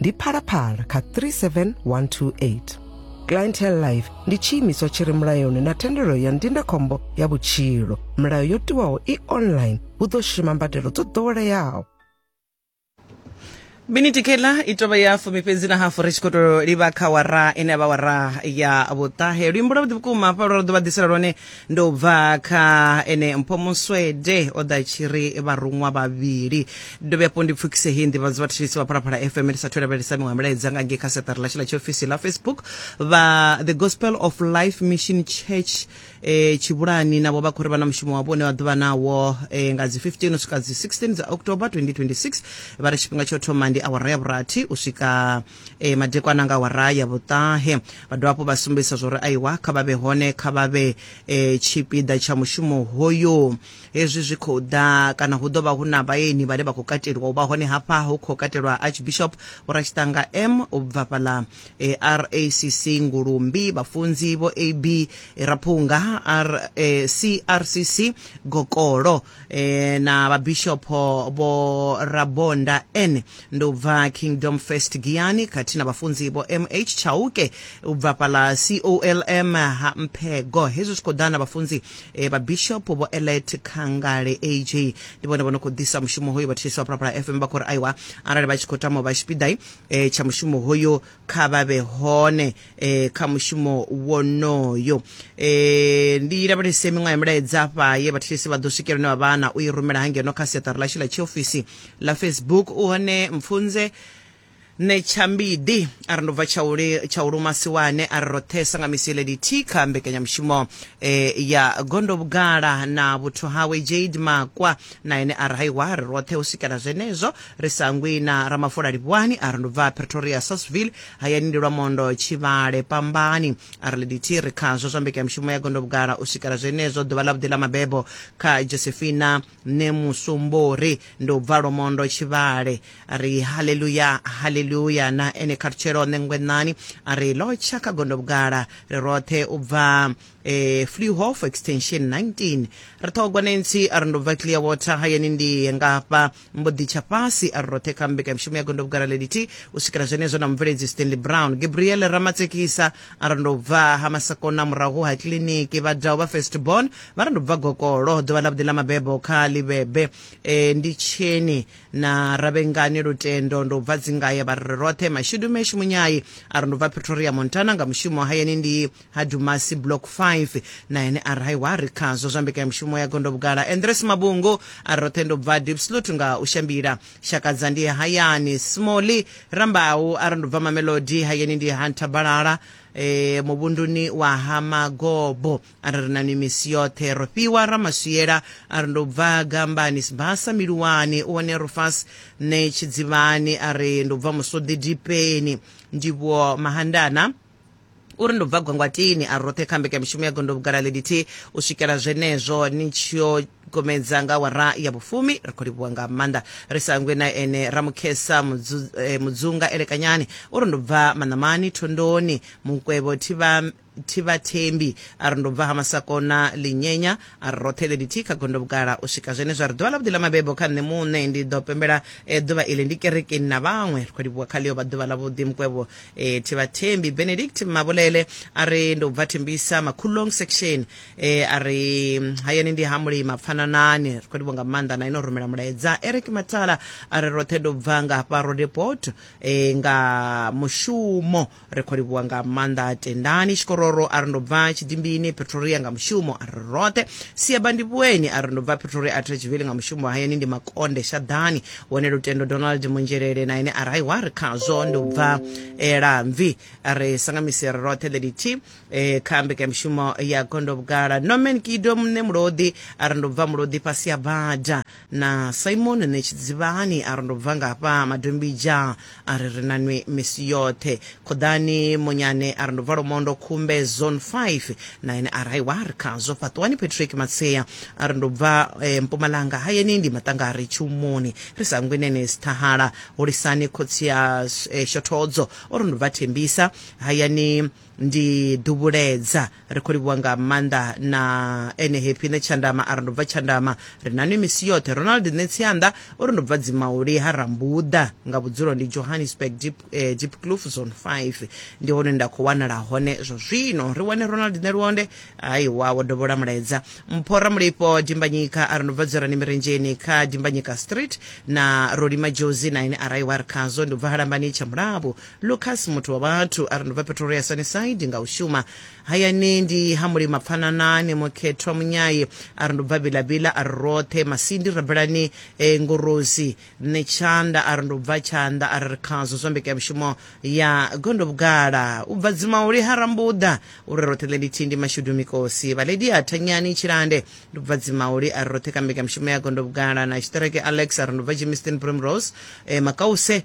ndi phalaphala kha 37128 clientele life ndi tshiimiswa tshi re mulayoni na thendelo ya ndindakhombo ya vhutshilo milayo yo tiwaho i online hu ḓo shuma mbadelo dzo ḓoweleaho miniti kela i tovha ya fumi fhedzi na hafu ri tshi khou tou livha kha wara ine ya vha wara ya vhuṱahe luimbo lwavhuḓi vhukuma hafha lwo ri ḓo vha ḓisela lwone ndo bva kha ene mpho muswede o ḓa tshi ri vharuṅwa vhavhili dovhe afho ndi pfukise hei nḓivhadzo vhathetshelisi vha phalaphala fm ndi sathu lavhelesa miṅwe milaedza nga ngei kha seṱari ḽashu ḽa tshiofisi ḽa facebook vha the gospel of life mission church eh, tshivhulani navho vha khou ri vha na mushumo wavho une vha ḓovha nawo eh, nga dzi 15 u swika dzi 16 dza october 2026 vha ri tshifhinga tsho thoma ndi awara ya vhurathi u swika e, eh, madekwana nga wara ya vhuṱahe vha dovha hafhu vha sumbedzisa zwo ri aiwa kha vha vhe hone kha vha vhe e, tshipiḓa tsha mushumo hoyo hezwi zwi khou ḓa kana hu ḓo vha hu na vhaeni vhane vha khou kateliwa u vha hone hafha hu khou katelwa archbishop vhoratshitanga m u bva fhaḽa e, racc ngulumbi vhafunzi vho ab raphunga r e, crcc gokolo e, na vhabishopho vho rabonda n ndi u bva kingdom first giani khathihi na vhafunzi vho mh chauke u bva fhala colm ha mphego hezwi zwi khou ḓa na vhafunzi e, vhabishopho vho elet khangale ag ndi vhone vho no khou ḓisa mushumo hoyo vha thetshelesi wa phalaphala fm vha khou ri aiwa arali vha tshi khou tama u vha tshipiḓai e, tsha mushumo hoyo kha vha vhe hone eh, kha mushumo wonoyo eh, ndi lavhelese miṅwe ya milaedza fha ye vhathetshelesi vha ḓo swikela une wa vha na u i rumela hangeno kha siaṱari ḽashu ḽa tshiofisi ḽa facebook u hone mpfunze ne tshambidi a ri ndo bva tshauli tshaulu masiwane a ri roṱhesa nga misi lady t kha mbekanyamushumo eh, ya gondo vhugala na vhuthu hawe jade makwa na ene a ri haiwa ri roṱhe u swikela zwenezwo ri sa ngwi na ramafola livhuwani a ri ndo bva pretoria sasville hayani ndi lwa mondo tshivhale pambani a ri liditi ri khazwo zwa mbekanyamushumo ya gondo vhugala u swikela zwenezwo ḓuvha ḽa vhuḓi ḽa mabebo kha josephina ne musumbori ndi u bva lwomondo tshivhale a ri haleluya haleluya na ene kharutshelo ṋengwenani a ri lotsha kha gondo vhugala ri roṱhe u bva eh, fluhof extension 19 ri ṱhogwa nancy a ri ndo bva clear water hayani ndi ngafha mbo ḓi tsha fhasi a ri roṱhe kha mbekamishumo ya gondo vhugara leliti u swikela zwenezwo na mubveledzi stanley brown gabriel ramatsekisa a ri ndo bva ha masakona murahu ha kiliniki vhadau vha first born vha ri ndo bva gokolo ḓuvha ḽa vhuḓi ḽa mabebo kha ḽivhebe e, ndi tsheni na ravhengani lutendo ndo bva dzingaya vha ri roṱhe mashudu meshu munyayi a ri ndo bva pretoria montana nga mushumo hayani ndi ha Dumasi Block 5 na ene a ri wa ri khazwo zwa mbekanyamushumo ya gondo vhugala Andres Mabungu a roṱhe ndo bva Diepsloot nga u shambila Shakadza ndi hayani Smolly Rambau a ri ndo bva Mamelodi hayani ndi ha Nthabalala e, muvhunduni wa ha Magobo a ri ri na ni misi yoṱhe Rofhiwa Ramaswiela a ri ndo bva Gambani Sibasa Miluwani u hone Rufas ne Tshidzivhani a ri ndo bva Musodi Dipeni Ndivhuwo Mahandana uri ndo bva gwangwatini a roṱhe kha mbekanyamushumo ya gondo vhugala ḽelithihi u swikela zwenezwo ni tshiyo gomedza nga wara ya vhufumi ri khou livhuwa nga maanḓa ri sa ngwe na ene ramukhesa eh, mudzunga elekanyani uri ndo bva maṋamani thondoni mukwevho thivha thivhathembi a ri ndo bva ha masakona linyenya a ri roṱhe ḽelithihi kha gondo vhugala u swika zwenezwo ri ḓuvha ḽavhuḓi ḽa mabebo kha nṋe muṋe ndi ḓo pembela eh, ḓuvha iḽi ndi kerekeni na vhaṅwe ri khou livhuwa kha ḽiyo vha ḓuvha ḽavhuḓi mukwevho e, thibathembi benedict mabulele a ri ndo bva thimbisa makhulong section e, a ri mm, hayani ndi ha mulima pfananani ri khou livho nga maanḓa na ino rumela mulaedza eric matala a ri roṱhe ndo bva nga hafha rodeport e, nga mushumo ri khou livhuwa nga maanḓa tendani tshikororo a ri ndo bva tshidimbini pretoria nga mushumo a ri roṱhe siabandivhueni a ri ndo bva pretoria a thetshiveli nga mushumo hayani ndi makonde shaḓani hone lutendo donald munzhelele na ine arali wa ri khazwo ndi u bva e, lamvi ri sangamisere roṱhe the dt e, kha mbekanyamushumo ya gondo vhugala norman kido mune mulodi a ri ndo bva mulodi fhasi ya bada na simon netshidzivhani a ri ndo bva ngafha madombija a ri ri na nwi misi yoṱhe khoḓani monyane a ri ndo bva lomondo khumbe zone 5 na ene a ri aiwa ri khazwo fhaṱuwani patrick matsea a ri ndo bva eh, mpumalanga hayeni ndi maṱangari tshumoni ri sa ngwi nene sithahala hulisani khotsi ya eh, shothodzo o ri ndo bva thembisa hayani ndi ḓuvhuledza ri khou livhuwa nga maanḓa na ene happy ne tshandama a ri ndo bva tshandama ri na nwi misi yoṱhe ronald nṋe tsianda o ri ndo bva dzimauli ha rambuḓa nga vhudzulo ndi johannesburg deep, eh, deep clof zone 5 ndi hone nda khou wanala hone zwa zwino ri wane ronald nṋe luonde aiwa wo dovhola mulaedza mpho ramulifho dimbanyika a ri ndo bva dzorani mirendzheni kha dimbanyika street na rolima jozi na ine araiwa ri khazwo ndi u bva halambani tsha mulabo lucas muthu wa vhathu a ri ndubva pretoria sunnyside nga u shuma hayani ndi ha mulima pfananani mukhethwa munyayi a ri ndubva bilabila a ri roṱhe masindi rabelani e, ngorozi nṋe tshanda a ri ndubva tshanḓa a ri ri khazwo zwa mbekanyamushumo ya gondo vhugala u bva dzimauli ha rambuḓa u ri roṱhe ḽe ndi thindi mashudu mikosi vhaledi ha thanyani tshilande ndubva dzimauli a ri roṱhe kha mbekanyamushumo ya gondo vhugala na tshiṱereke alex a ri ndubva jimiston primrose e, makause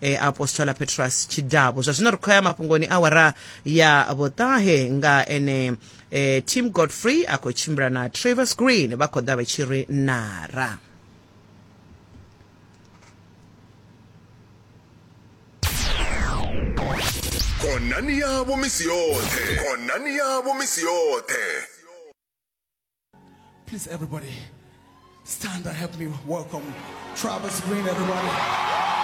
e, apostola petrus tshidavhu zwa zwino ri khou ya mafhungoni awara ya vhuṱahe nga ene e, tim godfrey a khou tshimbila na travers green vha khou ḓa vha tshi ri nara khonani yavho misi yoṱhe khonani yavho misi yoṱhe Please, everybody, stand and help me welcome Travis Green, everybody.